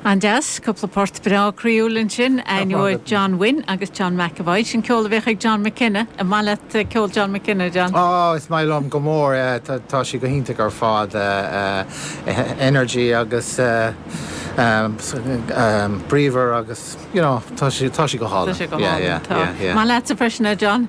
An-deas. Cúpla port breá croíúil ansin, againn ó John Wynne agus John McEvoy. Sin ceol a bheadh ag John McKenna. An maith leat ceol John McKenna, John? Ó, is maith liom go mór é. Tá sé go hiontach ar fad. Energy agus bríomhar agus, you know, tá sé go hálainn. Tá sé go hálainn, tá. Maith leatsa freisin é, John?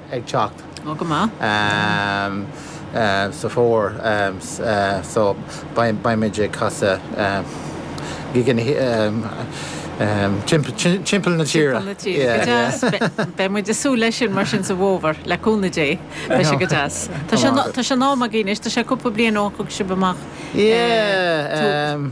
ag teacht. Ó, go maith. sa Fómhar so beimid ag casadh gigeanna timpeall na tíre. Timpeall na tíre. Go deas. Beidh muid ag súil leis sin mar sin sa bhFómhar, le cúnamh Dé. Beidh sé go deas. Tá sé in am agaibh anois. Tá sé cúpla bliain ó thug sibh amach tú.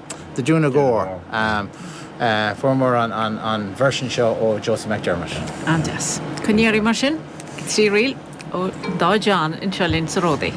The Doonagore. Fuaireamar an version seo ó Josie McDermott. An-deas. Coinnígí oraibh mar sin, trí ríl ón dá John anseo linn sa Ródaí.